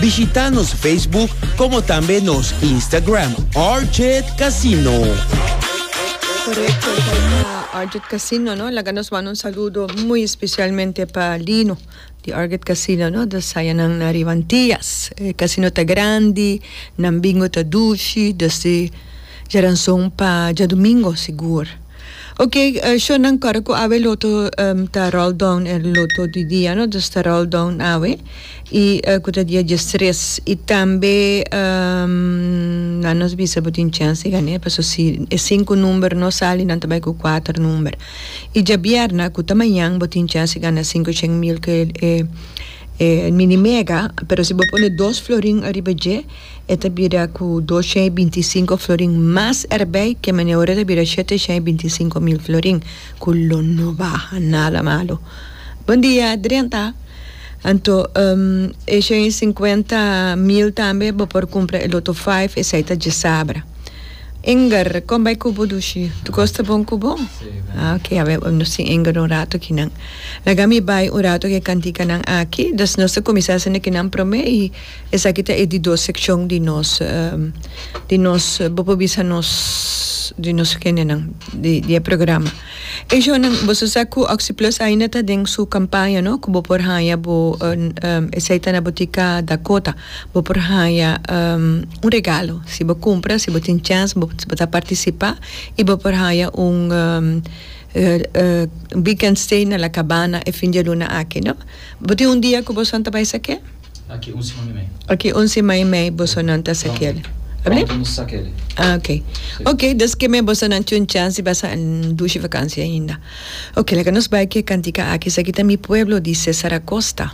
Bishita nos Facebook como tambe nos Instagram RJ Casino. Correcto, esa Arget Casino, ¿no? La nos manda un saludo muy especialmente para Lino de Arget Casino, ¿no? De Sayanan na Rivantillas. Eh, casino ta grande, nan bingo ta dushi, desde Jaranzon pa Ja Domingo, seguro. Ok, uh, show nan corre cu awe loto um, ta roll down el loto di dia, ¿no? Dus ta roll down awe. Y cu ta dia dies tres. Y tambe nan nos bisa bo tin chance di gane, paso si e cinco number no sali nan ta bay cu cuater number. Y diabierna cu ta mañan bo tin chance di gana cinco cheng mil cu e e mini mega, pero si bo pone dos florin ariba dje e ta bira cu dos cheng y binti cinco florin mas erbey que mane ora e ta bira shete cheng y binti cinco mil florin cu lo no baha nada malo. Bon dia drenta. Anto e shen i sinkuenta mil tambe bo por kumpra e loto five esei ta djesabra. Inger kon bai kubo dushi tu kos ta bon kubo? Ah ok a bai nos tin Inger un rato aki nan. Laga mi bai un rato e kantika nan aki dus nos ta kuminsá haciendo e kinan prome i esaki ta e di dos sekshon di nos di nos bo por bisa nos di nos hende nan di e programa. E jonan, boso sa cu Oxyplus ainda ta den su campaña no, cu bo por haya bo esey ta na Botica Dakota, bo por haya un regalo si bo cumpra, si bo tin chance bo ta participa y bo por haya un weekend stay na La Cabana e fin di luna aki no. Bo tin un dia cu boso antabae esaki? Aki un sima i mei. Aki un sima i mei bosonan ta sa keli. Abli? Pronto nos sa keli. Ah, ok. Si. Ok, dus ke mei bosonan tin un chans di basa en dushi vakansia ainda. Ok, laga nos bai ku e kantika aki. Esaki ta Mi Pueblo di Cesar Acosta.